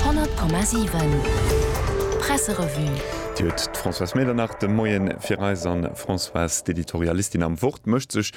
100,7 Presserevue. Déi huet d'Françoise Medernach de Moien fir eis. An d'Françoise, d'Editorialistin am Wort, mécht sech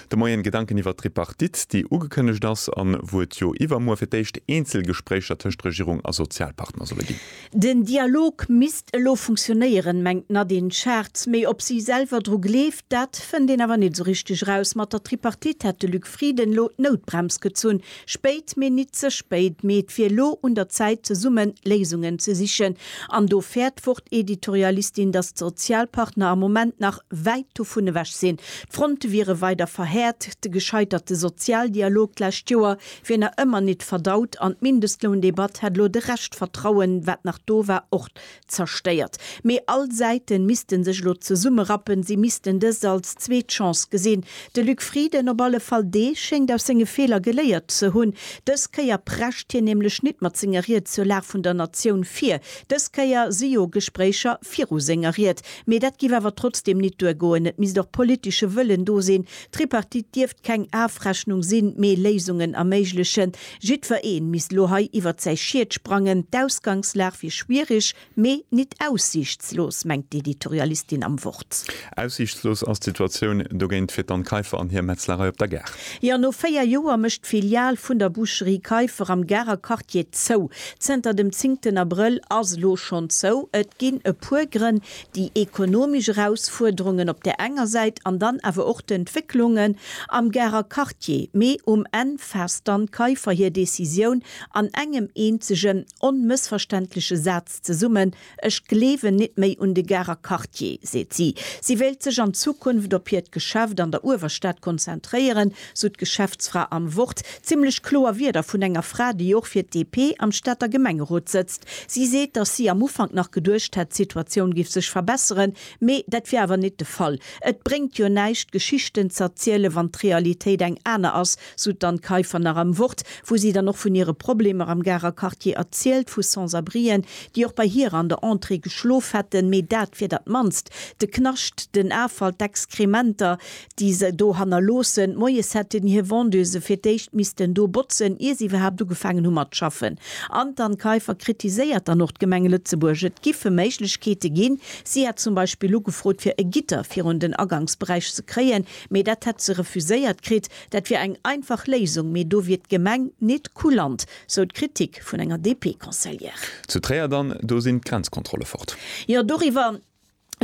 de Moien Gedanken iwwer d'Tripartite, déi ugekënnegt ass an wou et jo iwwermuer fir d'éischt Eenzelgespréicher tëscht Regierung a Sozialpartner solle ginn. Den Dialog misst elo funktionéieren, mengt d'Nadine Schartz. Mee ob si selwer dru gleeft, dat fënnt een awer net esou richteg eraus. Mat der Tripartite hätt de Luc Frieden elo d'Noutbrems gezunn, Spéit, mee nit ze spéit, mee et wier lo un der Zäit zesummen Léisungen ze sichen. An do fäert d'Wort-Editorialistin, datt d'Sozialpartner am Moment nach wäit dovun ewech sinn. D'Fronte wiere weider verhäert, de gescheiterte Sozialdialog d'lescht Joer wier nach ëmmer nit verdaut an d'Mindestloundebatt hätt lo de Rescht Vertrauen, wat nach do war, och Zerstéiert. Mee all Säiten missten sech elo zesumme rappen, si missten dëst als zweet Chance gesinn. De Luc Frieden op alle Fall, dee schéngt aus senge Feeler geléiert ze hunn. Dës Kéier prescht hien nämlech nit mat senger Ried zur Lag vun der Natioun vir. Dës Kéier si jo Gespréicher viru senger Ried. Mee dat giff awer trotzdem nit duer goen. Et misst och politesche Wëllen do sinn. D'Tripartite dierft keng Afrechnung sinn, mee Léisungen erméiglechen. Jiddfer een misst lo hei iwwert säi Schied sprangen. D'Ausgangslag wier schwierig, mee nit aussiichtslos, mengt d'Editorialistin am Wort. Aussiichtslos ass d'Situatioun dogéint fir d'Anne Kaiffer an hir Metzlerei op der Gare. Jo, no 4 Joer mécht d'Filial vun der Boucherie Kaiffer am Garer Quartier zou. Zënter dem zingten Abrëll ass lo schonn zou. Et ginn e puer Grënn, déi ekonomesch Erausfuerderungen op där enger Säit an dann awer och d'Entwécklungen am Garer Quartier, mee um Enn faasst dann d'Keifer hir Decisioun an engem eenzegen, onmëssverständleche Saz zesummen, Ech gleewen nit méi un de Garer Quartier, seet si. Si wéilt sech an Zukunft op hiert Geschäft an der Uewerstad konzentréieren, sou d'Geschäftsfra am Wort. Zimmlech kloer Wierder vun enger Fra, déi och fir d'DP am Stater Gemengerot sëtzt. Si seet, datt si am Ufank nach geduecht hätt, d'Situatioun géif sech verbesseren, mee dat wier awer net de Fall. Et bréngt jo näischt, Geschichten z'erzielen, wann d'Realitéit eng aner ass, sou d'Anne Kaiffer nach am Wort, wou si dann och vun hire Problemer am Garer Quartier erzielt, vu Sans-abrien, déi och bei hir an der Entrée geschlof hätten, mee dat wier dat Mannst. De Knascht, den Afall, d'Exkrementer, déi se do hannerloossen, moies hätten hir Vendeuse fir d'éischt missten do botzen, ier se iwwerhaapt ugefaangen hu mat schaffen. An d'Anne Kaiffer kritiséiert dann och d'Gemeng Lëtzebuerg. Et giffe Méiglechkeete ginn. Si hätt zum Beispill ugefrot, fir e Gitter virun den Aganksberäich ze kréien, mee dat hätt se refuséiert kritt. Dat wier eng einfach Léisung, mee do wier d'Gemeng nit kulant, sou d'Kritik vun enger DP-Conseillère. Zu Tréier dann, do sinn d'Grenzkontrolle fort. Jo, doriwwer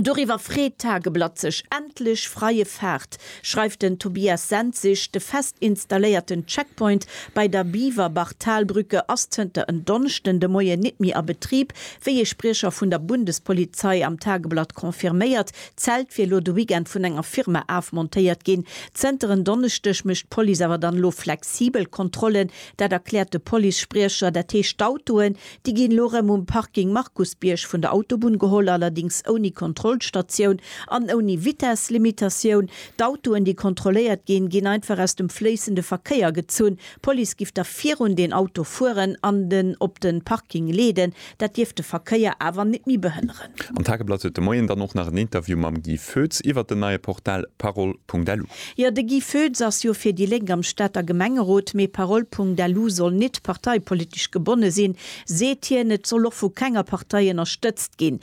Doriwwer freet d'Tageblatt sech, Endlech freie Fahrt, schreift den Tobias Senzig. De fest installéierten Checkpoint bei der Biwerbach-Talbrücke ass zënter en Donneschden de Moien nit méi a Betrib, wéi ee Spriecher vun der Bundespolizei am Tageblatt confirméiert. D'Zelt wier elo de Weekend vun enger Firma afmontéiert ginn. Zënter en Donneschdeg mécht d'Police awer dann elo flexibel Kontrollen. Dat erkläert de Police-Spriecher. Dat heescht, d'Autoen, Déi ginn elo rëm um Parking Markusbierg vun der Autobunn geholl, allerdings ouni Kontrollstatioun an ouni Vitesslimitatioun. D'Autoen, déi kontrolléiert ginn, ginn einfach aus dem fléissende Verkéier gezunn. D'Police giff da virun den Auto fueren an en op de Parking leeden. Dat dierft de Verkéier awer net méi behënneren. Am Tageblatt huet de Moien dann och nach en Interview mam Guy Foetz iwwert den neie Portal Parol Pungdalu. Jo, de Guy Foetz ass jo fir déi Lénk am Stater Gemengerot, mee Parole Pungdalu soll nit parteipolitesch gebonne sinn, seet hien. Et soll och vu kenger Partei ënnerstëtzt ginn.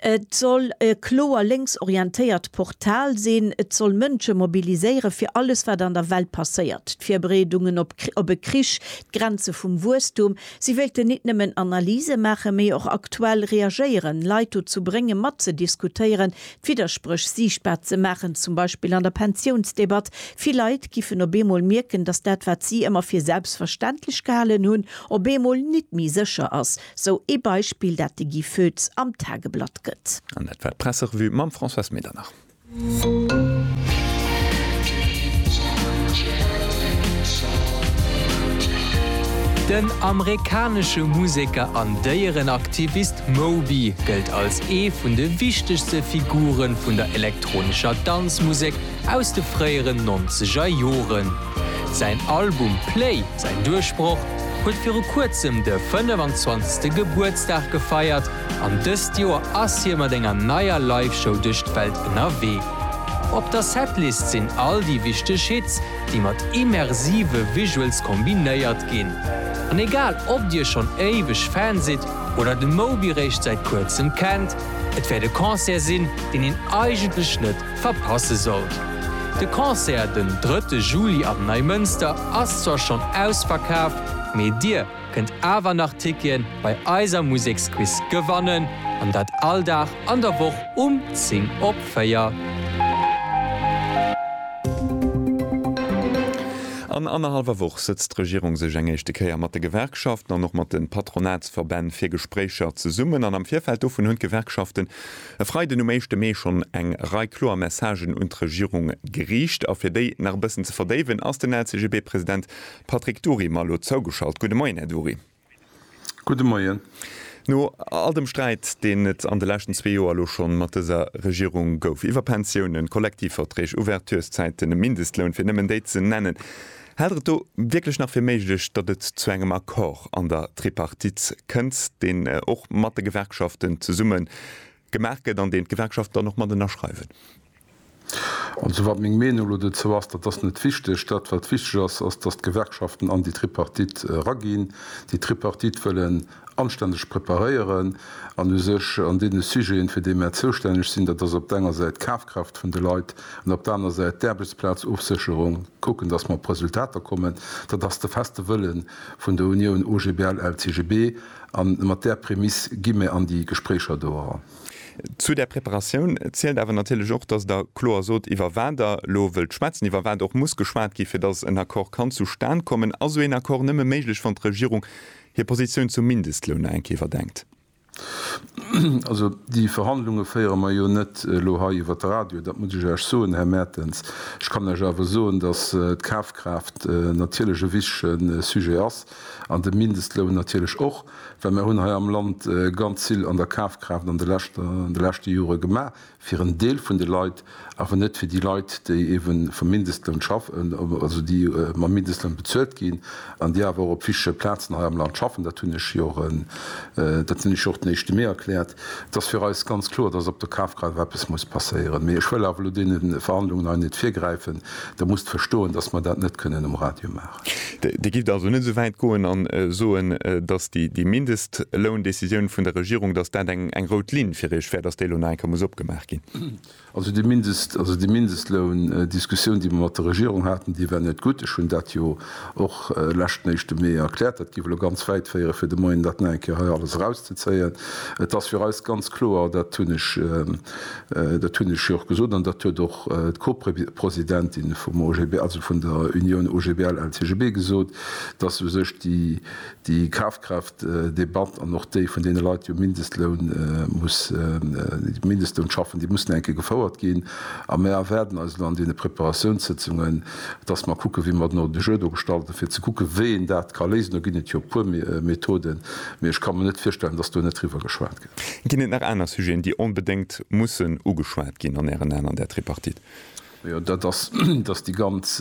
Et soll e kloer lénks orientéiert Portal sinn. Et soll Mënsche mobiliséiere fir alles, wat an der Welt passéiert, d'Virbereedungen op e Krich, d'Grenze vum Wuesstum. Si wéilten nit nëmmen Analyse maachen, mee och aktuell reagéieren, Leit dozou bréngen, matzediskutéieren, D'Widderspréch siichtbar ze maachen, zum Beispill an der Pensiounsdebatt. Vill Leit giffen op eemol mierken, datt dat, wat si ëmmer fir selbstverständlech gehalen hunn, op eemol nit méi sécher ass. Sou ee Beispill, dat de Guy Foetz am Tageblatt gëtt. An dat war d'Presserevue mam Françoise Medernach. Den amerikanesche Museker an Déierenaktivist D'Moby gëllt als ee vun de wichtegste Figure vun der elektronescher Danzmusek aus de fréieren nonzeger Joren. Säin Album Play, säin Duerchbroch, huet viru kuerzem de 25. Gebuertsdag gefeiert an dëst Joer ass hie mat enger neier Live-Show duerch d'Welt ënnerwee. Op der Setlist sinn all déi wichteg Hits, déi mat immersive Visuals kombinéiert ginn. An egal ob dir schonn éiweg Fan sidd Oder de Moby réischt säit kuerzem kennt. Et wäert e Concert sinn, deen een eigentlech net verpasse sollt. De Concert den drëtte Juli am Neimënster ass zwar schonn ausverkaaft, mee dir kënnt awer nach Tickete bei eiser Museksquiz gewannen, an dat all Dag an der Woch um 10 op 4. An annerhallwer Woch sëtzt d'Regierung sech eng éischte Kéier mat de Gewerkschaften an och mat de Patronatsverbänn fir Gespréicher zesummen. An am Virfeld dovun hunn d'Gewerkschaften e Freiden, um éischte Mee, schonn eng Rei kloer Messagen un d'Regierung geriicht. A fir déi nach e bëssen ze verdéiwen, ass den LCGB-President Patrick Dury mer elo zougeschalt. Gudde Moien, Här Dury. Gudde Moien. No all dem Sträit, deen et an de leschten zwee Joer elo schonn mat dëser Regierung gouf, iwwer Pensiounen, Kollektivverträg, Ouverturszäiten, e Mindestloun, fir nëmmen déi ze nennen, hält Der et do wierklech nach fir méiglech, datt et zu engem Accord an der Tripartite kënnt, deen och mat de Gewerkschaften zesummen Gemaach gëtt an deen d'Gewerkschaften dann och mat ënnerschreiwen. Also wat meng Meenung elo dozou ass, dat ass net wichteg. Dat, wat wichteg ass, ass, dass d'Gewerkschaften an déi Tripartite eraginn. Déi Tripartite wëllen anstänneg preparéieren an u sech an deene Sujeten, fir déi mär zoustänneg sinn, dat ass op der enger Säit d'Kafkraaft vun de Leit an op der aner Säit d'Aarbechtsplazofsécherung, kucken, dass mer op Resultater kommen. Dat ass de feste Wëlle vun der Unioun OGBL-LCGB. A mat där Prämiss gi mir an déi Gespréicher do eran. Zu där Preparatioun zielt awer natierlech och, dass Der kloer sot, iwwer wat Der elo wëllt schwätzen, iwwer wat och muss geschwat gi fir dass en Accord kann zustan kommen. Ass esou een Accord nëmme méiglech, wann d'Regierung hir Positioun zum Mindestloun nach eng Kéier iwwerdenkt? Also déi Verhandlunge féiere mer jo net elo hei iwwer de Radio, dat muss ech Iech soen, Här Mertens. Ech kann Iech awer soen, dass d'Kafkraaft natierlech e wichtige Sujet ass. An de Mindestloun natierlech och, well mer hunn hei am Land ganz vill an der Kafkraaft an de leschte Jore gemaach fir en Deel vun de Leit, awer net fir déi Leit, déi eebe vum Mindestloun schaffen, also déi mam Mindestloun bezuelt ginn an déi awer och op wichtege Plazen hei am Land schaffen. Dat hunn ech jo och den éischte Mee erkläert. Et ass fir eis ganz kloer, datt op der Kafkraaft eppes muss passéieren. Mee ech wëll awer elo deene Verhandlungen hei net virgräifen. Der musst verstoen, datt mer dat net kënnen um Radio maachen. Dir gitt also net esou wäit goen a soen, datt déi Mindestloundecisioun vun der Regierung, datt dat eng rout Linn fir Iech wär, datt déi elo nach eng Kéier muss opgemaach ginn? Also déi Mindestloundiskussioun, déi mer mat der Regierung haten, déi war net gutt. Ech hunn dat jo och leschten éischte Mee erkläert. Dat géif elo ganz wäit féieren, fir de Moien dat nach eng Kéier hei alles erauszezéien. Et ass fir eis ganz kloer, dat hunn ech, Dat hunn ech jo och gesot an dat huet och d'Co-Presidentin vum OGBL, also vun der Unioun OGBL-LCGB gesot, dass u sech déi Kafkraaftdebatt an och déi vun deene Leit, déi um Mindestloun schaffen, déi mussen enke gefouert ginn. A mir erwaarden eis elo an deene Preparatiounssëtzungen, dass mer kucken, wéi mer den Ordre du jour do gestalten, fir ze kucken, wéi een dat ka léisen. Do ginn et jo e puer Methoden, mee ech ka mer net virstellen, dass do net driwwer geschwat gëtt. Ginn et nach aner Sujeten, déi onbedéngt mussen ugeschwat ginn an Ären Aen an där Tripartite? Jo, dat ass, datt déi ganz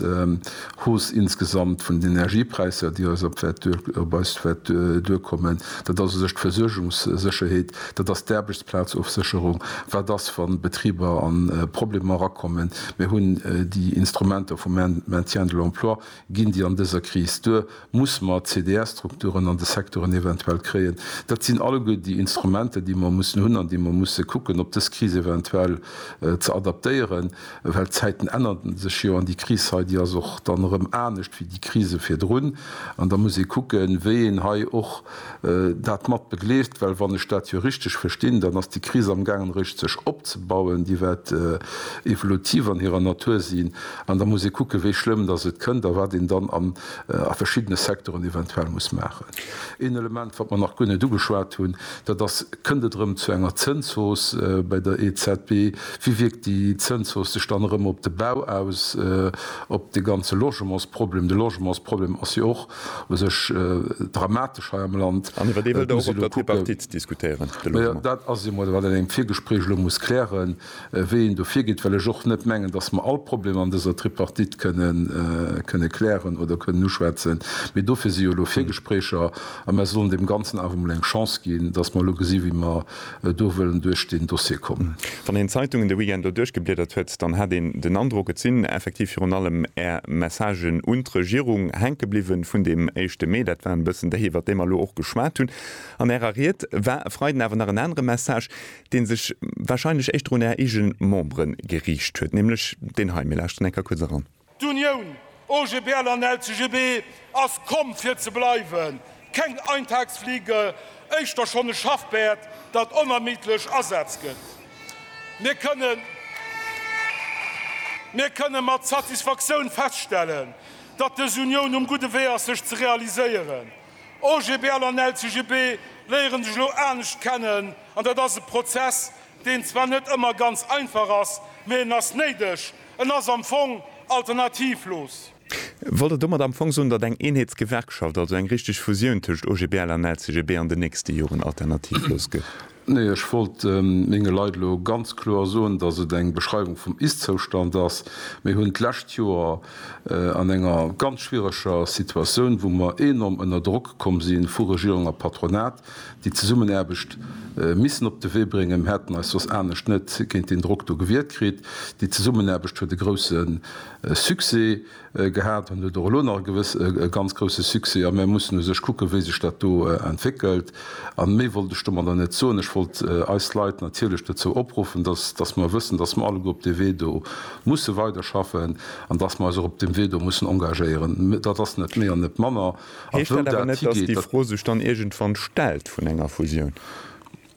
Hausse insgesamt vun den Energiepräisser, déi eis op wäert duer, op eis wäert duerkommen, dat ass u sech d'Versuergungssécherheet, dat ass d'Aarbechtsplazofsécherung. Wat ass, wa Betriber a Problemer erakommen? Mir hunn déi Instrumenter vum Maintien de l'emploi, Ginn déi an dëser Kris duer? Muss mer CDR-Strukturen an de Sektoren eventuell kréien? Dat sinn alleguer déi Instrumenter, déi mer mussen hunn an déi mer musse kucken, ob dës Kris eventuell ze adaptéieren, well d'Zäiten ännern sech jo an déi Kris hei, déi ass och dann erëm anescht wéi déi Krise virdrun. An da muss ee kucken, wéi een hei och dat mat begleeft, well wann ech dat jo richteg verstinn, dann ass déi Kris am gaangen eréischt sech opzebauen, déi wäert evolutiv an hirer Natur sinn an da muss ee kucken, wéi schlëmm datt et kënnt a wat een dann a verschiddene Secteuren eventuell muss maachen. Een Element, wat mer nach guer net ugeschwat hunn, dat ass, kënnt et erëm zu enger Zënshausse bei der EZB? Wéi wierkt déi Zënshausse sech dann erëm op de Bau aus, op de ganze Logementsproblem? De Logementsproblem ass jo och u sech dramatesch hei am Land. An iwwer dee wëllt Der och op der Tripartite diskutéieren, de Logement. Dat ass eemol, wat een an engem Virgespréich elo muss klären, wéi een do virgeet, well ech och net mengen, datt mer all Problemer an dëser Tripartite kënne klären oder kënnen uschwätzen. Mee dofir si jo elo Virgespréicher a mer sollen deem Ganzen awer emol eng Chance ginn, datt mer elo gesi wéi mer do wëllen duerch deen Dossier kommen. Wann een d'Zeitungen de Weekend do duerchgebliedert huet, dann hat een den Androck, et sinn effektiv virun allem Är Messagen un d'Regierung hänke bliwwen vun deem éischte Mee. Dat war en bëssen déi, iwwert déi mer elo och geschwat hunn. An Ärer Ried war e Freiden awer nach en anere Message, dee sech wahrscheinlech éischter un Är eege Membere geriicht huet, nämlech deen hei. Mir lauschteren eng Kéier kuerz eran. D'Unioun OGBL an LCGB ass komm fir ze bleiwen, keng Eintagsfliege, éischter schonn e Schaffpäerd, dat onermiddlech Asaz gëtt. Mir kënnen Mir kënnen mat Satisfaktioun feststellen, datt dës Unioun um gudde Wee ass sech ze realiséieren. OGBL an LCGB léieren sech elo anescht kennen an dat ass e Prozess, deen zwar net ëmmer ganz einfach ass, mee en ass néideg, En ass am Fong alternativlos. Wollt Der domat am Fong soen, datt eng Eenheetsgewerkschaft, also eng richteg Fusioun tëscht OGBL an LCGB, an den nächste Joren alternativlos gëtt? Nee, ech wollt menge Leit elo ganz kloer soen, datt et eng Beschreiwung vum Ist-Zoustand ass. Mir hunn d'lescht Joer an enger ganz schwiereger Situatioun, wou mer enorm ënner Drock komm si vu Regierung a Patronat, Déi Zesummenaarbecht missen op de Wee bréngen. Mir hätten eis soss anescht net géint deen Drock do gewiert kritt. Déi Zesummenaarbecht huet e grousse Succès gehat an huet och elo nach e ganz grousse Succès. A mir mussen u sech kucken, wéi sech dat do entwéckelt. An méi wollt ech domadder net soen. Ech wollt eis Leit natierlech dozou opruffen, dass mer wëssen, dass mer alleguer op dee Wee do musse weiderschaffen an dass mer eis och op deem Wee do mussen engagéieren. Dat ass net méi an net manner. Heescht dat awer net, datt déi Fro sech dann iergendwann stellt vun enger Fusioun?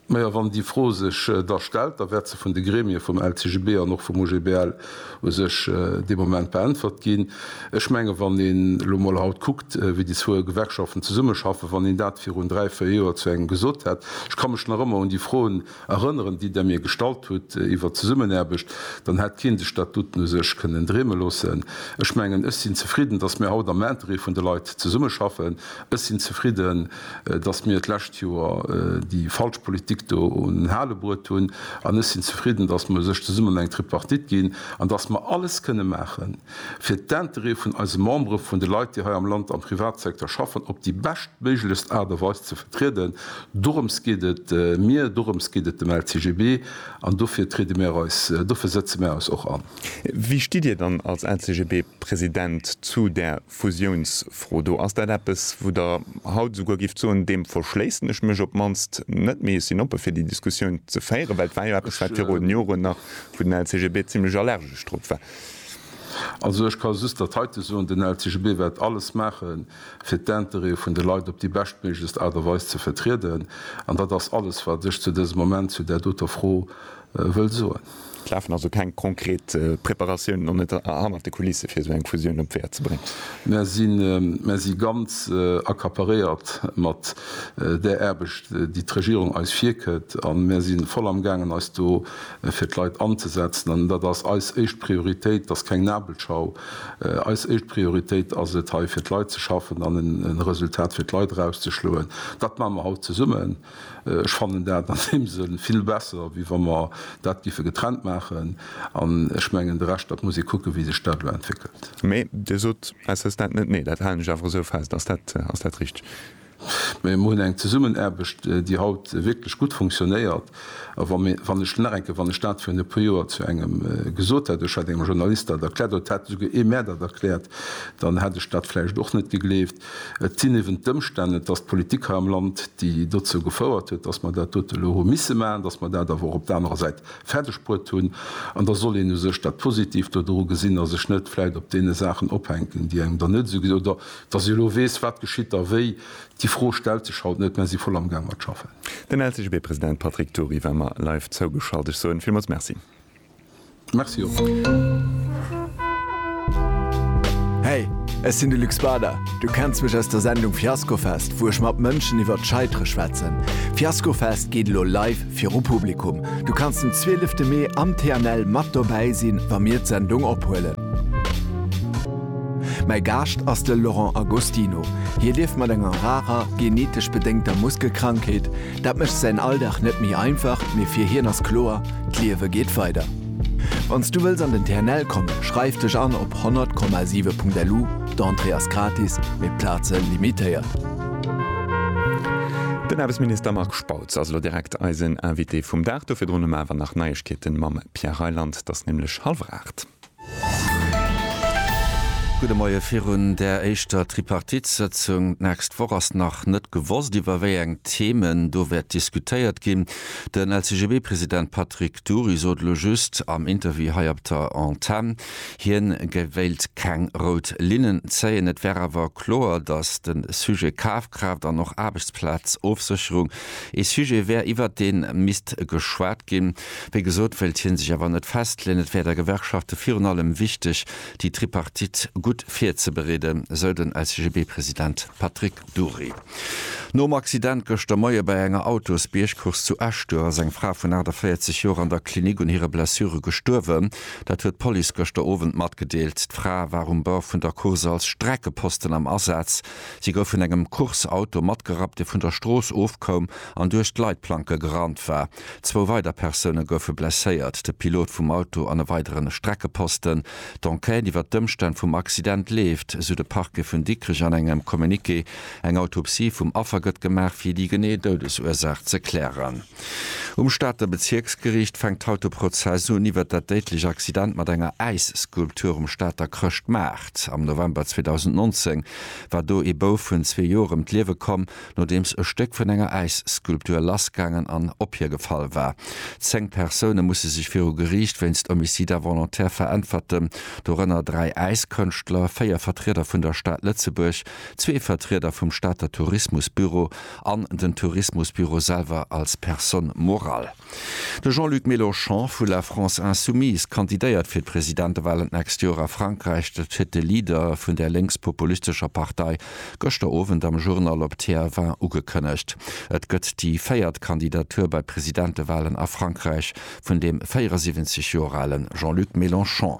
Majo, wann déi Fro sech da stellt, da wäert se vun de Gremie vum LCGB an och vum OGBL u sech dee Moment beäntwert ginn. Ech mengen, wann een elo mol haut kuckt, wéi déi zwou Gewerkschaften zesummeschaffen, wann een dat virun dräi, véier Joer zu engem gesot hätt, ech ka mech nach ëmmer un déi Fro Erënneren, déi Der mir gestallt hutt iwwer d'Zesummenaarbecht, dann hätt keen de Statuten u sech kënnen dreeme loossen. Ech mengen, ech sinn zefridden, dass mir haut am Interêt vun de Leit zesummeschaffen. Ech sinn zefridden, dass mir d'lescht Joer déi falsch Politik do un den Hale bruet hunn. An ech sinn zefridden, dass mer u sech zesummen eng Tripartite ginn an dass mer alles kënne maachen, fir d'Intérêt vun eise Membere, vun de Leit, déi hei am Land am Privatsecteur schaffen, op déi beschtméiglechst Aart a Weis ze vertrieden. Dorëms geet et mir, dorëms geet et dem LCGB, an dofir triede mir eis, dofir sëtze mir eis och an. Wéi stitt Dir dann als LCGB-President zu där Fusiounsfro do? Ass dat eppes, wou Der haut esouguer gifft soen, deem verschléissen ech mech op d'mannst net, mee ech sinn oppe fir déi Diskussioun ze féieren? Well et war jo eppes, wat virun Joren nach, wou den LCGB zimlech allergesch drop war. Also ech ka just dat heite soen, den LCGB wäert alles maache fir d'Intérêtë vun de Leit op déi beschtméiglechst Aart a Weis ze vertrieden. An dat ass alles wat ech zu dësem Moment zu där doter Fro wëll soen. Et lafen also keng konkret Preparatiounen an net hannert de Kulisse fir esou eng Fusioun op d'Wäer ze bréngen? Mär si ganz accaparéiert mat där Aarbecht déi d'Regierung eis virkëtt a mär si voll am gaangen eis do fir d'Leit anzesetzen, an dat ass eis éischt Prioritéit. Et ass keng Nabelschau. Eis éischt Prioritéit ass et, hei fir d'Leit ze schaffen an e Resultat fir d'Leit erauszeschloen. Dat maache mer haut zesummen. Ech fannen dat an deem Sënn vill besser, wéi wa mer dat géife getrennt maachen. An ech mengen, de Rescht, dat muss ee kucken, wéi sech dat elo entwéckelt. Mee Dir sot, s s dat net? Nee, dat halen ech awer esou fest. Ass dat richteg? Mä mir hunn eng Zesummenaarbecht, déi haut wierklech gutt funktionéiert. A wa mir, wann ech nach eng Kéier, wann ech dat virun e puer Joer zu engem gesot hätt, ech hätt engem Journalist dat erkläert oder et hätt esouguer ee mär dat erkläert, dann hätt ech dat vläicht och net gegleeft. Et sinn eeben d'Ëmstänn, et ass d'Politik hei am Land, déi dozou gefouert huet, dass mer dat dote elo hu misse maachen, dass mer dat awer och op der anerer Säit fäerdegbruet hunn. An da soll een u sech dat Positiivt do dru gesinn a sech net vläicht op deene Saachen ophänken, déi engem dann net esou, oder Dass ee elo weess, wat geschitt a wéi, déi Fro stellt sech haut net. Mä si voll amgaang mat schaffen. Den LCGB-President Patrick Dury war mer live zougeschalt. Ech soen villmools Merci. Merci och. Hey, ech sinn de Luc Spader. Du kenns mech aus der Sendung Fiaskofest, wou ech mat Mënschen iwwert d'Scheitere schwätzen. Fiaskofest geet elo live viru Publikum. Du kanns den 12 Mee am TNL mat dobäi sinn, wa mir d'Sendung ophuelen. Mäi Gaascht ass de Laurent Agostino. Hie lieft mat enger rarer, genetesch bedéngter Muskelkrankheet. Dat mécht säin Alldag net méi einfach, mee fir hien ass kloer, D'Liewe geet weider. Wann s du wëlls an den TNL kommen, schreif dech an op 100,7.lu, d'Entrée ass gratis, mee d'Plaze limitéiert. Den Aarbechtsminister Marc Spautz ass elo direkt eisen Invité vum Dag. Do virdrun hu mer awer nach Neiegkeeten mam Pierre Reyland. T'ass nämlech hallef 8. Kontakt. Gudde Moie virun där éischter Tripartite-Sëtzung. D'nächst Woch ass nach net gewosst, iwwer wéi eng Themen do wäert diskutéiert ginn. Den LCGB-President Patrick Dury sot elo just am Interview hei op der Antenn, hien wéilt keng rout Linnen zéien. Et wär awer kloer, datt de Sujet Kafkraaft an och Aarbechtsplazofsécherung ee Sujet wär, iwwer dee misst geschwat ginn. Wéi gesot, wëllt hien sech awer net festleeën. Et wär der Gewerkschafte virun allem wichteg, déi Tripartite gutt virzebereeden, esou den LCGB-President Patrick Dury. Nom Accident gëschter Moie bei enger Autosbiergcourse zu Esch-Duerf ass eng Fra vun 48 Joer an der Klinik un hire Blessure gestuerwen. Dat huet d'Police gëschter Owend matgedeelt. D'Fra war um Bord vun der Course als Streckeposten am Asaz. Si gouf vun engem Course-Auto matgerappt, dee vun der Strooss ofkoum an duerch d'Leitplanke gerannt war. Zwou weider Persoune goufe blesséiert, de Pilot vum Auto an e weideren Streckeposten. D'Enquête iwwer d'Ëmstänn vum Accident leeft, esou de Parquet vun Dikrech an engem Communiqué. Eng Autopsie vum Affer gëtt gemaach, fir déi genee Doudesursaach ze klären. Um Stater Bezierksgeriicht fänkt haut de Prozess un iwwer dat déidlech Accident mat enger Äisskulptur um Stater Chrëschtmaart. Am November 2019 war do ee Bouf vun zwee Joer ëm d'Liewe komm. Nodeems e Stéck vun enger Äisskulptur lassgaangen an op hie gefall war. Zéng Persoune musse sech viru Geriicht wéinst Homicide involontaire veräntwerten, dorënner dräi Äiskënschtler, véier Vertrieder vun der Stad Lëtzebuerg, zwee Vertrieder vum Stater Tourismusbüro an den Tourismusbüro selwer als personne morale. De Jean-Luc Mélenchon vu La France Insoumise kandidéiert fir d'Presidentewalen d'nächst Joer a Frankräich. Dat huet de Leader vun där lénkspopulistescher Partei gëschter Owend am Journal op TF1 ugekënnegt. Et gëtt déi véiert Kandidatur bei Presidentewalen a Frankräich vun deem 74 Joer ale Jean-Luc Mélenchon.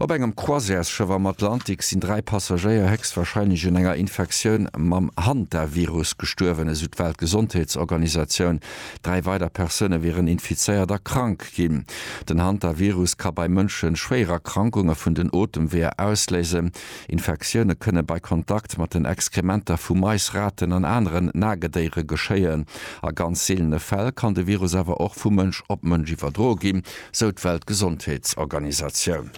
Op engem Croisièresschëff am Atlantik sinn dräi Passagéier héchstwarscheinlech un enger Infektioun mam Hantavirus gestuerwen, esou d'Weltgesondheetsorganisatioun. Dräi weider Persoune wieren infizéiert a krank ginn. Den Hantavirus ka bei Mënsche schwéier Erkrankunge vun den Otemweeër ausléisen. Infektioune kënne bei Kontakt mat den Exkrementer vu Mais, Raten an aneren Nagedéiere geschéien. A ganz seelene Fäll kann de Virus awer och vu Mënsch op Mënsch iwwerdroe ginn. sou d'Weltgesondheetsorganisatioun.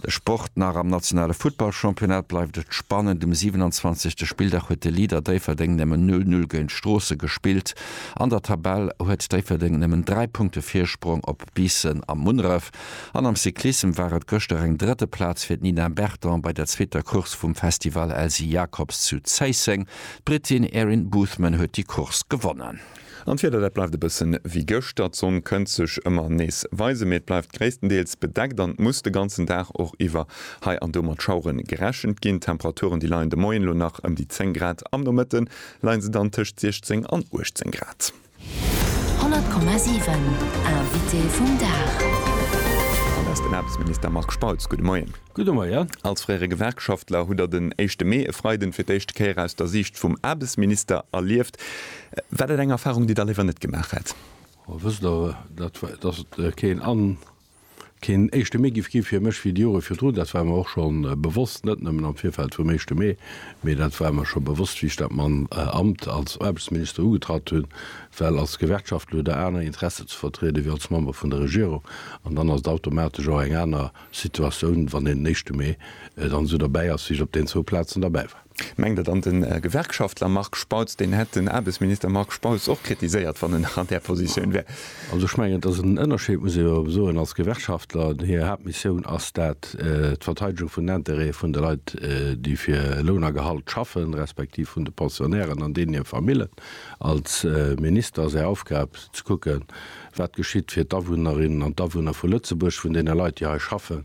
De Sport, Nach am nationale Futtballchampionnat bleift et spannend. Um 27. Spilldag huet de Leader Déifferdeng nëmmen 0 Null géint Stroossen gespillt. An der Tabell huet Déifferdeng nëmmen 3 Punkte Virsprong op Biissen a Munneref. An am Cyclissem war et gëschter eng drëtte Plaz fir d'Nina Berton bei der zweeter Course vum Festival Elsy Jacobs zu Zéisseng. D'Brittin Erin Boothman huet déi Course gewonnen. An d'Wieder, dat bleift e bëssen wéi gëschter. D'Sonn kënnt sech ëmmer nees weisen, mee et bleift gréisstendeels bedeckt an et muss de ganzen Dag och iwwer hei an do mat Schauere gerechent ginn. D'Temperaturen, déi leien de Moien elo nach ëm déi 10 Grad, am Nomëtte leien se dann tëscht 16 an 18 Grad. 100,7 Invité vum Dag. Dat ass den Aarbechtsminister Marc Spautz. Gudde Moien. Gudde Moien. Als fréiere Gewerkschaftler hutt Der den éischte Mee, e Freiden, fir d'éischte Kéier aus der Siicht vum Aarbechtsminister erlieft. War dat eng Erfahrung, déi Der léiwer net gemaach hätt? A wësst Der, dat, datt et keen an keen éischte Mee giff gi fir mech wéi déi Jore virdrun, dat war mer och scho bewosst, net nëmmen am Virfeld vum éischte Mee, mee dat war mer scho bewosst, wéi ech dat man Amt als Aarbechtsminister ugetratt hunn, well als Gewerkschaftler hutt Der aner Interessen ze vertriede wéi als Member vun der Regierung, an dann ass et automatesch och eng aner Situatioun, wann een den éischte Mee dann esou derbäi ass, wéi ech op den zwou Plazen derbäi war. Mengt Der dann, den Gewerkschaftler Marc Spautz, deen hätt den Aarbechtsminister Marc Spautz och kritiséiert, wann en nach an där Positioun wär? Also ech mengen, et ass en Ënnerscheed, muss ee jo soen, als Gewerkschaftler, hir Haaptmissioun ass dat, d'Verteidegung vun den Intérêtë vun de Leit, déi fir Loun a Gehalt schaffen, respektiv vun de Pensionnairen an deenen hir Famillen. Als Minister ass Är Aufgab, ze kucken, wat geschitt fir d'Awunnerinnen an d'Awunner vu Lëtzebuerg, vun deene Leit, déi hei schaffen,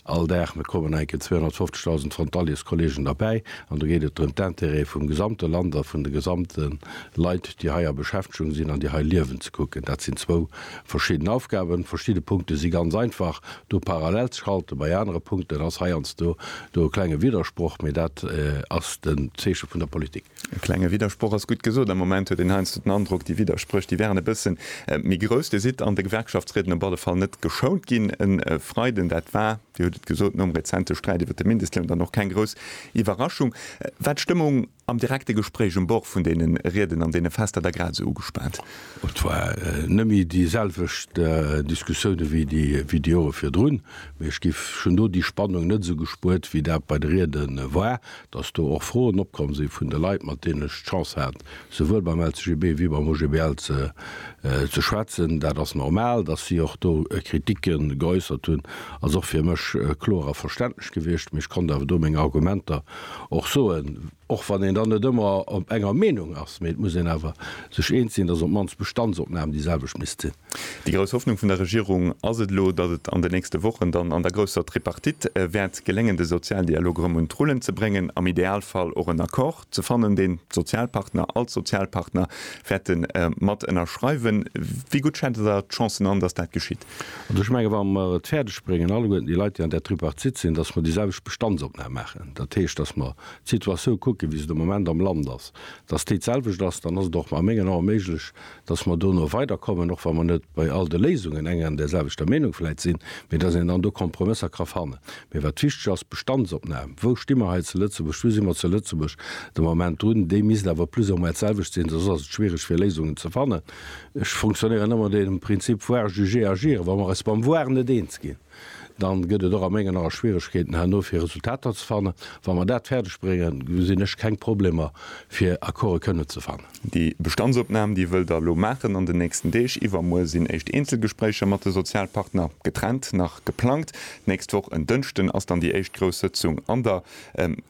All Dag me kommen enke 250.000 Frontaliers-Kollegen derbäi, an do geet et drëm, d'Intérêt vum gesamte Land a vun de gesamte Leit, déi hei a Beschäftegung sinn an déi hei liewen, ze kucken. Dat sinn zwou verschidden Aufgaben. Verschidde Punkte si ganz einfach do parallel ze schalten, bei anere Punkten ass heiansdo do e klenge Widdersproch, mee dat ass den Zeeche vun der Politik. E klenge Widdersproch ass gutt gesot. Am Moment huet een heiansdo den Androck, déi Widderspréch, déi wären e bëssen méi grouss. Dir sidd an de Gewerkschaftsrieden op alle Fall net geschount ginn e Freiden. Dat war, Dir hutt et gesot, nom rezente Sträit iwwer de Mindestloun dann och keng grouss Iwwerraschung. War d'Stëmmung am direkte Gespréich um Bord vun deene Rieden an deene Fester da grad esou ugespaant? Et war nëmme déi selwecht Diskussioune wéi déi Jore virdrun, mee ech géif, ech hunn do déi Spannung net esou gespuert, wéi dat bei de Riede war. dass do och Froen opkomm si vun de Leit, mat deenen ech d'Chance hat, souwuel beim LCGB wéi beim OGBL ze schwätzen. Dat ass normal, dass si och do Kritike geäussert hunn, ass och fir mech kloer a verständlech gewiescht. Mee ech konnt awer do meng Argumenter och soen, och wann een dann net ëmmer enger Meenung ass. Mee et muss een awer sech eens sinn, dass op d'mannst d'Bestandsopnam déi selwecht misst sinn. Déi grouss Hoffnung vun der Regierung ass et elo, datt et an den nächste Wochen dann an der grousser Tripartite wäert geléngen, de Sozialdialog erëm un d'Rullen ze bréngen, am Idealfall och en Accord ze fannen, deen d'Sozialpartner, all d'Sozialpartner wäerte mat ënnerschreiwen. Wéi gutt schätzt Der d'Chancen an, datt dat geschitt? Also ech menge wa mer et fäerdeg bréngen, alleguerten déi Leit, déi an där Tripartite sinn, datt mer déi selwecht Bestandsopnam maachen, dat heescht, datt mer d'Situatioun kucken, wéi se de Moment am Land ass, datt déi d'selwecht ass, dann ass et och a mengen Ae méiglech, dass mer do no weider kommen, och wa mer net bei all de Léisungen eng an där selwechter Meenung vläit sinn, mee dass een dann do Kompromësser ka fannen. Mee wat wichteg ass, d'Bestandsopnam, wou sti mer hei zu Lëtzebuerg, wou si mer zu Lëtzebuerg de Moment drun, déi misst awer plus ou moins d'selwecht sinn, soss ass et schwierig fir Léisungen ze fannen. Ech fonctionnéieren ëmmer no deem Prinzip voir juger agir, wa mer eis beim voir net eens ginn, dann gëtt et och a mengen Ae Schwieregkeeten herno fir Resultater ze fannen. Wa mer dat fäerdeg bréngen, gesinn ech keng Problemer fir Accorde kënnen ze fannen. Déi Bestandsopnam, déi wëllt Der elo maachen an den nächsten Deeg. Iwwermuer sinn éischt Eenzelgespréicher mat de Sozialpartner, getrennt, nach geplangt. D'nächst Woch en Dënschden ass dann déi éischt grouss Sëtzung an der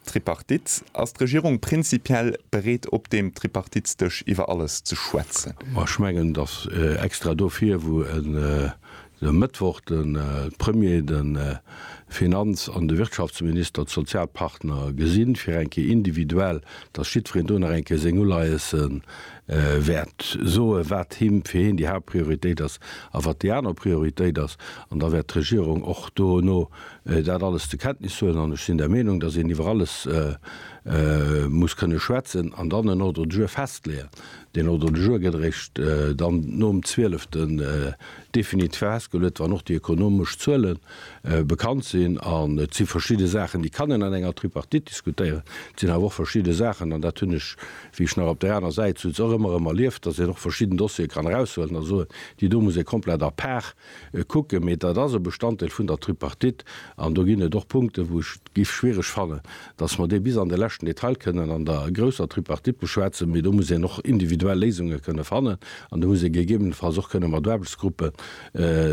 Tripartite. Ass d'Regierung prinzipiell bereet op deem Tripartitesdësch iwwer alles ze schwätzen? Ech mengen, datt extra dofir, wou e De Mëttwoch de Premier, de Finanz an de Wirtschaftsminister, d'Sozialpartner gesinn, fir eng Kéier individuell, datt jiddwereen do nach eng Kéier seng Uleiesse wäert soen, wat him, fir hien déi Haaptprioritéit ass a wat déi aner Prioritéit ass. An da wäert d'Regierung och dono dat alles zur Kenntnis huelen. An ech sinn der Meenung, datt een iwwer alles muss kënne schwätzen an dann en Ordre du jour festleeën. Deen Ordre du jour gëtt eréischt dann nom 12. Definit festgeluet, wann och déi ökonomesch Zuele bekannt sinn, an et si verschidde Saachen, déi kann een an enger Tripartite diskutéieren, et sinn awer och verschidde Saachen, an dat hunn ech, wéi ech nach op där aner Säit souz, och ëmmer erëm erlieft, datt een och verschidden Dossiere kann eraushuelen a soen, déi do muss ee komplett à part kucken. Mee dat ass e Bestanddeel vun der Tripartite, an do ginn et och Punkten, wou ech et géif schwiereg fannen, datt mer dee bis an de leschten Detail kënnen an der grousser Tripartite beschwätzen, mee do muss een och individuell Léisunge kënne fannen an do muss ee gegebenenfalls och kënne mat Aarbechtsgruppe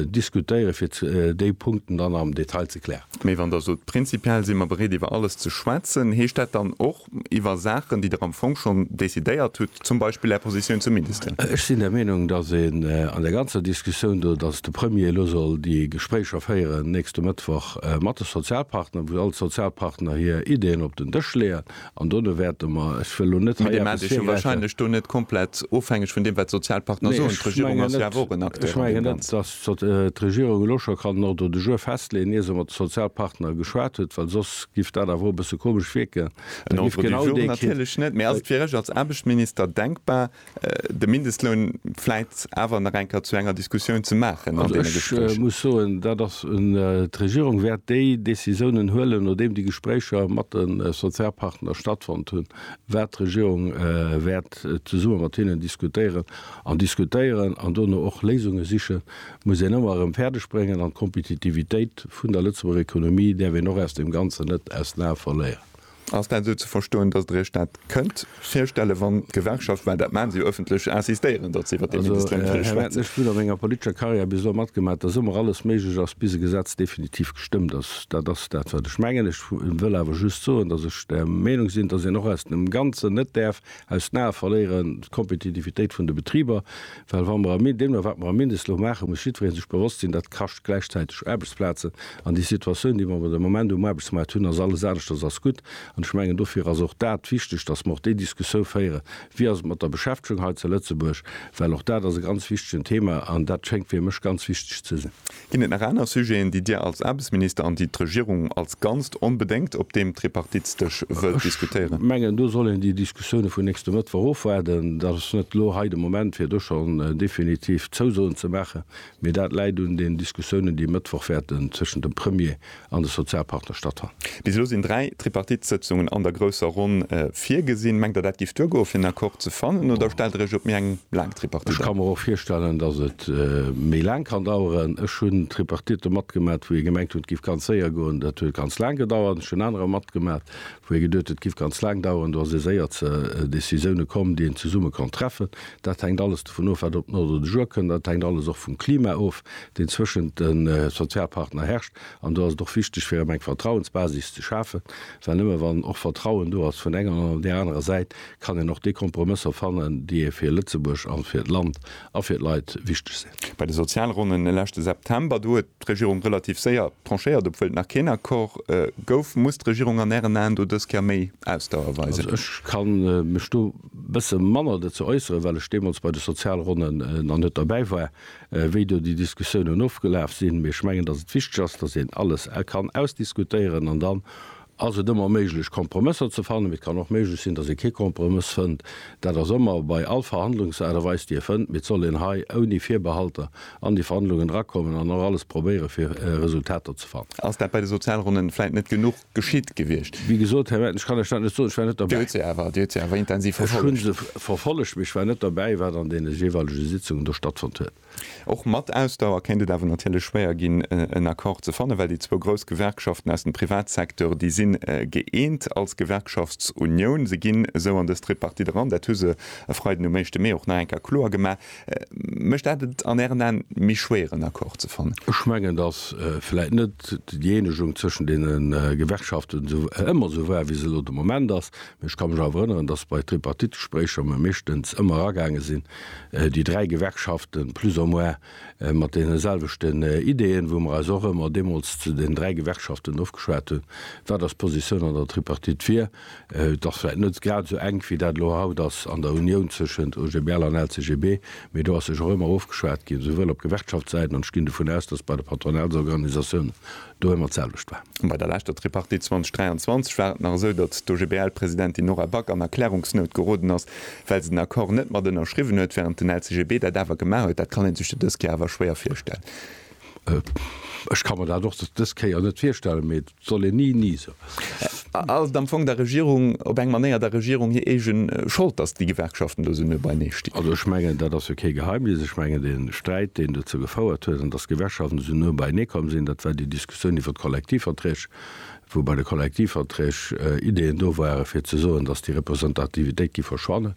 diskutéiere fir déi Punkten dann am Detail ze klären. Mee wann Der sot, prinzipiell si mer bereet iwwer alles ze schwätzen, heescht dat dann och iwwer Saachen, déi Der am Fong schonn decidéiert hutt, zum Beispill Är Positioun zum Mindestloun? Ech sinn der Meenung, datt een an där ganzer Diskussioun do, datt de Premier elo soll déi Gespréicher féieren nächste Mëttwoch, mat de Sozialpartner, wou all d'Sozialpartner hir Ideeën op den Dësch leeën an dono wäerte mer, ech wëll elo net hei eppes virgräifen. Mee déi maachen sech jo wahrscheinlech do net komplett ofhängeg vun deem, wat d'Sozialpartner soen. D'Regierung ass jo awer och en Acteur an deem Ganzen. Ech mengen net, datt d'Regierung elo scho kann en Ordre de jour festleeën, ier se mat de Sozialpartner geschwat huet, well soss giff dat awer och e bësse komesch wierken. En Ordre du jour natierlech net, mee ass et fir Iech als Aarbechtsminister denkbar, de Mindestloun vläit awer nach eng Kéier zu enger Diskussioun ze maachen an deene Gespréicher. Also ech muss soen, dat ass un, d'Regierung wäert déi Décisiounen huelen, nodeem déi Gespréicher mat de Sozialpartner stattfonnt hunn, wäert d'Regierung wäert zesumme mat hinnen diskutéieren an diskutéieren an dono och Léisunge siche muss een ëmmer erëm fäerdeg bréngen. An d'Kompetitivitéit vun der Lëtzebuerger Ekonomie däerf een och aus deem Ganzen net aus den Ae verléieren. Ass dat esou ze verstoen, datt Der Iech dat kënnt virstellen, wann d'Gewerkschaft, well dat maachen se jo ëffentlech, insistéieren, datt se iwwert dee Mindestloun wëlle schwätzen? Ech hunn a menger politescher Karriär bis elo matgemaach, datt ëmmer alles méiglech ass, bis e Gesetz definitiv gestëmmt ass. Dat ass dat, wat ech mengen. Ech wëll awer just soen, datt ech der Meenung sinn, datt een och aus dem Ganzen net däerf aus den Ae verléieren d'Kompetitivitéit vun de Betriber, Well wa mer am, deemno wat mer am Mindestloun maachen, muss jiddweree sech bewosst sinn, dat kascht gläichzäiteg Aarbechtsplazen. An déi Situatioun, déi mer awer de Moment um Aarbechtsmaart hunn, ass alles aneschters als gutt. An ech mengen, dofir ass och dat wichteg, dass mer och déi Diskussioun féieren, Wéi ass et mat der Beschäftegung hei zu Lëtzebuerg? Well och dat ass e ganz wichtegen Thema an dat schéngt fir mech ganz wichteg ze sinn. Ginn et nach aner Sujeten, déi Dir als Aarbechtsminister an déi d'Regierung als Ganzt onbedéngt op deem Tripartitesdësch wëllt diskutéieren? Ech mengen, do soll een déi Diskussioune vun nächste Mëttwoch ofwaarden. Dat ass net elo hei de Moment, fir do schonn definitiv Zousoen ze maachen, mee dat läit un den Diskussiounen, déi e Mëttwoch wäerten tëschent dem Premier an de Sozialpartner Stadtrat. Bis elo sinn dräi Tripartite-Sëtzungen an der grousser Ronn virgesinn. Mengt Der, dat géif duergoen, fir en Accord ze fannen, oder stellt Der Iech op méi eng laang Tripartite an? Ech ka mer och virstellen, datt et méi laang kann daueren. Ech hunn Tripartitten matgemat, wou ee gemengt huet, et géif ganz séier goen, dat huet ganz laang gedauert. Ech hunn anerer matgemat, wou ee geduet huet, et géif ganz laang daueren, do ass ee séier zu Decisioune komm, déi een zesumme konnt treffen. Dat hänkt alles dovun of, wat op den Ordre du jour kënnt, dat hänkt alles och vum Klima of, deen zwëschent de Sozialpartner herrscht, an do ass et och wichteg fir erëm eng Vertrauensbasis ze schafen, well nëmme wann och Vertrauen do ass vun enger an där anerer Säit, kann een och déi Kompromësser fannen, déi ee fir Lëtzebuerg a fir d'Land a fir d'Leit wichteg sinn. Bei de Sozialronnen e leschte September, do huet d'Regierung relativ séier tranchéiert, obwuel et nach keen Accord gouf. Muss d'Regierung an Ären Aen do dës Kéier méi Ausdauer weisen? Also ech ka mech do e bësse manner dozou äusseren, well ech deemools bei de Sozialronnen nach net derbäi war. wéi do déi Diskussiounen ofgelaf sinn, mee ech mengen, datt et wichteg ass, datt een alles kann ausdiskutéieren an dann ass et ëmmer méiglech, Kompromësser ze fannen. Mee et kann och méiglech sinn, datt ee kee Kompromëss fënnt. Dat ass ëmmer bei all Verhandlungsaart a Weis, déi ee fënnt. Mee et soll een hei ouni Virbehalter an déi Verhandlungen erakommen an och alles probéieren, fir Resultater ze fannen. Ass dat bei de Sozialronnen vläicht net genuch? geschitt gewiescht. Wéi gesot, Här Merten, ech kann lech dat net soen, ech war net derbäi. Dir hutt se awer, Dir hutt se awer intensiv verfollegt. Ech hu se verfollegt, mee ech war net derbäi, wat an deene jeeweilege Sitzungen do stattfonnt huet. Och mat Ausdauer kéint et awer natierlech schwéier ginn, en Accord ze fannen, well déi zwou grouss Gewerkschaften aus dem Privatsecteur, déi si gëeent als Gewerkschaftsunioun. Se ginn esou an dës Tripartite eran, dat hu se e Freiden um éischte Mee och nach eng Kéier kloer gemaach. Mécht dat et an Ären Aen méi schwéier en Accord ze fannen? Ech mengen, datt vläit net déi Eenegung zwëschen deene Gewerkschaften ëmmer esou war, wéi se elo de Moment ass. Mee ech ka mech awer erënneren, datt bei Tripartite-Gespréicher mer meeschtens ëmmer eragaange sinn, déi dräi Gewerkschaften plus ou moins mat deene selwechten Ideeën, wou mer eis och ëmmer deemools zu den dräi Gewerkschaften ofgeschwat hunn, wat eis Positioun an der Tripartite wier. Et ass vläit net grad esou enk, wéi dat elo haut ass an der Unioun tëschent OGBL an LCGB, mee do ass sech och ëmmer ofgeschwat ginn, souwuel op Gewerkschaftssäit, an ech ginn dovun aus, datt et bei de Patronatsorganisatiounen do ëmmer d'selwecht war. Bei der leschter Tripartite 2023 war et nach esou, datt d'OGBL-Presidentin Nora Back an Erklärungsnout geroden ass, well se den Accord net mat ënnerschriwwen huet, wärend den LCGB dat awer gemaach huet. Dat kann ee sech jo dës Kéier awer schwéier virstellen. Ech ka mer dat och dës Kéier net virstellen, mee Soll een ni ni soen. Ass et am Fong der Regierung op eng Manéier der Regierung hir eege Schold, datt déi Gewerkschaften do esou no beinee stinn? Also ech mengen, dat ass jo kee Geheimnis. Ech mengen, dee Sträit, deen dozou gefouert huet, an datt d'Gewerkschaften esou no beinee komm sinn, dat war déi Diskussioun iwwer d'Kollektivverträg, wou bei de Kollektivverträg Ideeën do ware fir ze soen, datt déi Representativitéit géif verschwannen.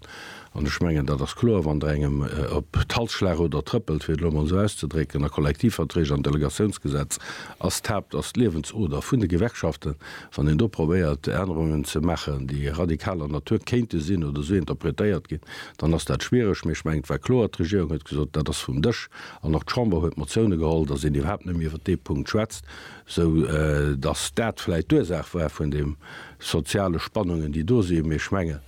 An ech mengen, dat ass kloer, wann Der engem op d'Hals schlacht oder trëppelt, fir et elo emol esou auszedrécken, a Kollektivverträg an Delegatiounsgesetz ass d'Haupt, ass d'Liewensoder vun de Gewerkschaften, wann een do probéiert, Ännerungen ze maachen, déi radikaler Natur kéinte sinn oder esou interpretéiert ginn, dann ass dat schwiereg. Mee ech mengen, et war kloer, d'Regierung huet gesot, dat ass vum Dësch, an och d'Chamber huet Motioune geholl, datt een iwwerhaapt net méi iwwer dee Punkt schwätzt, esou datt dat vläicht d'Ursaach war vun deem soziale Spannungen, déi do sinn. Mee ech mengen,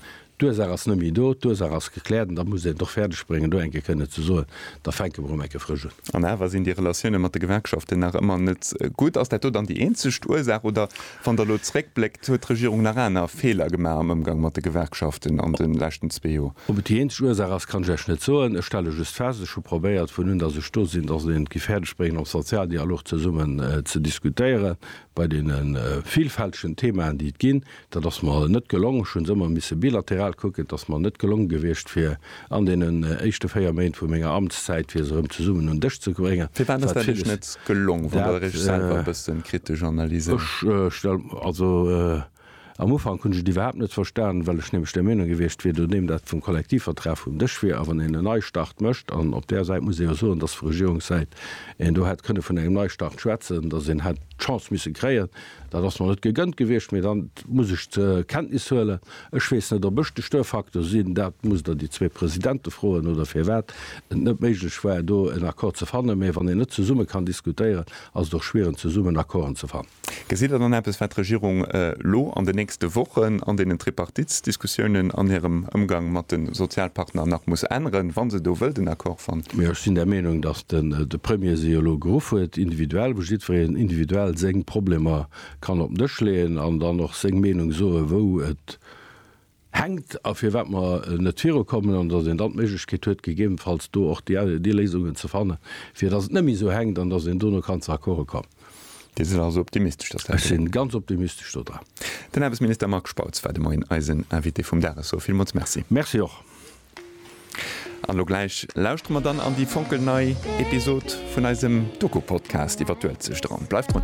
D'Ursaach ass net méi do, d'Ursaach ass gekläert an da muss een et och fäerdeg bréngen, do eng Kéier kënne ze soen, da fänke mer erëm eng Kéier frësch un. An awer sinn déi Relatioune mat de Gewerkschaften nach ëmmer net gutt. Ass dat do dann déi eenzeg Ursaach oder, wann Der elo zréckbléckt, huet d'Regierung nach aner Feeler gemaach am Ëmgang mat de Gewerkschaften an de leschten zwee Joer? Ob et déi eenzeg Ursaach ass, kann ech Iech net soen. Ech stelle just fest, ech hu probéiert, vun un datt ech do sinn, datt een et géif fäerdeg bréngen am Sozialdialog zesummen ze diskutéieren, bei deene vilfältegen Themaen, déi et ginn, Dat ass mer net gelong. Ech hu se ëmmer misse bilateral kucken. Et ass mer net gelong gewiescht, fir an deenen éischte véier Méint vu menger Amtszäit, fir se erëm zesummen un Dësch ze bréngen. Firwat ass dat Iech net gelong, wann Der Iech selwer e bësse kritesch analyséiert? Ech stelle, also am Ufank hunn ech et iwwerhaapt net verstanen, well ech nämlech der Meenung gewiescht wier, nodeem dat vum Kollektivvertrag vum Dësch wier a wann een en Neistart mécht, an op där Säit muss ee jo soen, dass vu Regierungssäit een do hätt kënne vun engem Neistart schwätzen, dass een hätt d'Chance misse kréien, Dat ass mer net gegënnt gewiescht, mee dann muss ech zur Kenntnis huelen. Ech weess net, ob ech de Störfaktor sinn. Dat musst Der déi zwee Presidente froen, oder firwat et net méiglech war, do en Accord ze fannen. Mee wann een net zesumme kann diskutéieren, ass et och schwieren, zesummen Accorden ze fannen. Gesitt Der dann eppes, wat d'Regierung elo an den nächste Wochen an deenen Tripartitsdiskussiounen an hirem Ëmgang mat de Sozialpartner nach muss änneren, wa se do wëllt en Accord fannen? Ech sinn der Meenung, dass den de Premier se jo elo geruff huet, individuell, wou jiddwereen individuell seng Problemer kann op den Dësch leeën an dann och seng Meenung soen, wou et hänkt a firwat mer net virukommen, an datt een dann d'Méiglechkeet huet, gegebenfalls do och déi Léisungen ze fannen, fir datt et net méi esou hänkt an datt een dono kann zu Accorde kommen. Dir sidd also optimistesch, datt dat geet? Ech si ganz optimistesch do dran. Den Aarbechtsminister Marc Spautz war de Moien eisen Invité vum Dag. Ech soe villmools Merci. Merci och. An elo gläich lauschtere mer dann an déi fonkelnei Episod vun eisem Doku-Podcast iwwer d'Uelzecht eran. Bleift drun!